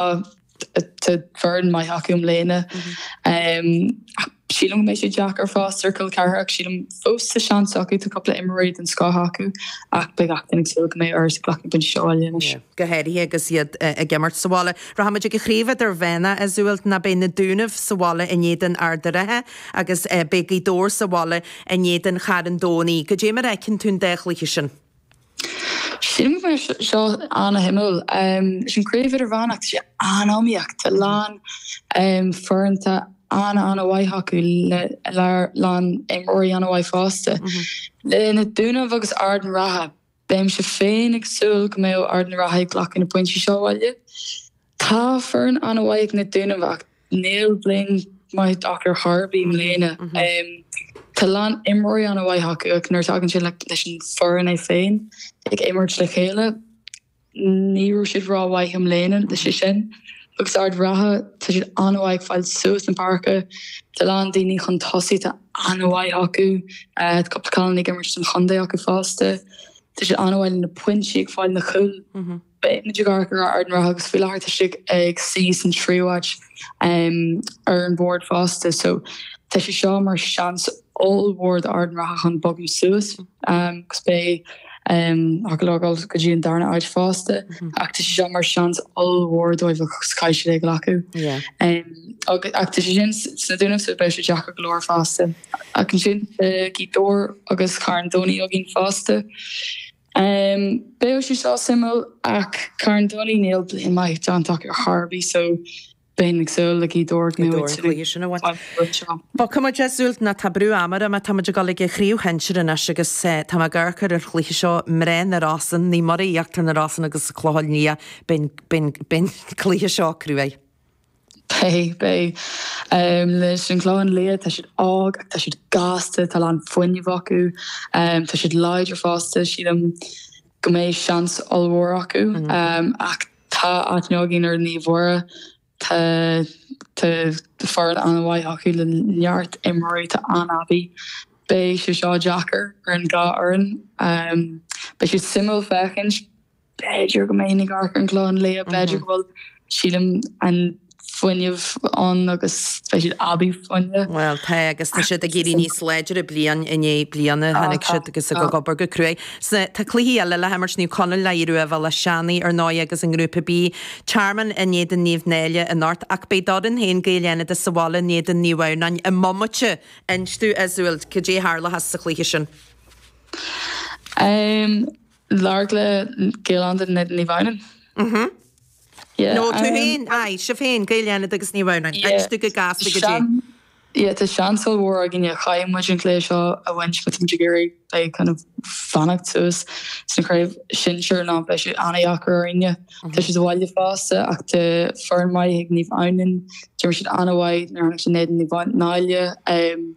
Tá foireann maith acu i mbliana. Sílim go mbeidh sé deacair fós ar Chill Chartha ach sílim fós tá seans acu tá cúpla imreoirí den scoth acu ach beidh gach duine ag súil go mbeidh Iorras ag glacadh na bpointí seo abhaile anois. Go háirithe agus iad ag imirt sa bhaile. Rachaimid ag an chraobh idirmheánach Iseult ná beidh na Dúnaibh sa bhaile in éadan Ard an Rátha agus beidh Gaoth Dobhair sa bhaile in éadan Charn Domhnaigh. Cad é mar a fheiceann tú an dá chluiche sin. Sílim go mbeidh sé seo an-shuimiúil. Leis an craobh idirmheánach, tá sé an-iomaíoch. Tá a lán foireann atá an-an-mhaith acu le a lán imreoirí, an-mhaith fosta. Leis na Dúnaibh agus Ard an Rátha, beimse féin ag súil go mbeidh Ard an Rátha ag glacadh na bpointí seo abhaile. Tá foireann an-mhaith ag na Dúnaibh ach níl bliain maith acu ar chor ar bith i mbliana. Tá a lán imreoirí an-mhaith acu ach nuair a thagann sé leis an bhfoireann é féin ag imirt le chéile, ní raibh siad rómhaith i mbliana. Leis sin, agus Ard an Rátha, tá siad an-mhaith ag fáil suas na páirce, tá a lán daoine chun tosaigh atá an-mhaith acu, tá cúpla cailín ag imirt don chontae acu fosta. Tá siad an-mhaith le na pointí ag fáil, na cúil. Beidh muid ag amharc ar Ard an Rátha agus faoi láthair tá siad ag suí san tríú áit ar an bhord fosta so tá sé seo mar seans ollmhór do Ard an Rátha chun bogadh suas agus b'fhéidir a ghabháil go dtí an darna áit fosta ach tá sé seo mar seans ollmhór dóibh agus caithfidh siad é a ghlacadh ach tá sé sin sna Dúnaibh so beidh sé deacair go leor fosta. Ach ansin tá Gaoth Dobhair agus Carn Domhnaigh againn fosta. Em, beidh sé seo suimiúil, ach Carn Domhnaigh, níl bliain maith déanta acu ar chor ar bith, so beinn ag súil le Gaoth Dobhair an cluiche sin a bhaint uaidh seo. Bhuel, tá muid, Iseult, ná tá brú ama orm, tá muid ag dul ag an chraobh shinsir anois agus tá mé ag amharc ar an chluiche seo, mná na Rosann, Naomh Muire Íochtar na Rosann agus an Clochán Liath, beidh, beidh, beidh an cluiche seo cruaidh. Beidh, beidh. Leis an Chlochán Liath, tá siad óg ach tá siad gasta, tá a lán fuinnimh acu, tá siad láidir fosta. Sílim go mbeidh seans ollmhór acu. Ach tá aithne againn ar Naomh Muire, tá, tá foireann an-mhaith acu le neart imreoirí atá an-aibí. Beidh sé seo deacair ar an dhá fhoireann. Beidh sé suimiúil féachaint. B'fhéidir go mbeidh mé ag amharc ar an Chlochán Liath, b'fhéidir go bhfuil, sílim, an fuinneamh ann agus beidh siad aibí fuinne. Bhuel, tá, agus tá siad ag éirí níos láidre bliain i ndiaidh bliana, tháinig siad agus ag obair go cruaidh. Tá cluichí eile le himirt, Naomh Conaill le hAodh Rua Béal Átha Seanaidh ar ndóigh agus i nGrúpa B, Tearmann in éadan Naomh Náille anocht, ach beidh d'fhoireann féin Gaeil Fhánada sa bhaile in éadan Naomh Adhamhnáin i mbomaite inis dúinn, Iseult, cad é a tharlóchas sa chluiche sin? Lorg le Gaeil Fhánada and Naomh Adhamhnáin. Mhm. Yeah. No, tú um, féin, aye, sibh féin, Gaeil Fhánada agus Naomh Adhamhnáin, yeah. agus tú go gasta go dtí. Yeah, tá seans an-mhór againne caithfidh muid an cluiche seo a bhaint cos tá muid ag iarraidh le kind of fanacht suas sna craobh sinsear nó beidh sé ana-dheacair orainne. Mhm. Tá sé as baile fosta ach tá foireann maith ag Naomh Adhamhnáin, d'imir siad ana-mhaith nar tháinig sé Ned Naomh Náille um,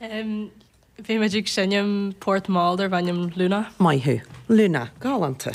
Bhí muid ag seinm port mall darbh ainm Luna. Maith thú. Luna. Galánta.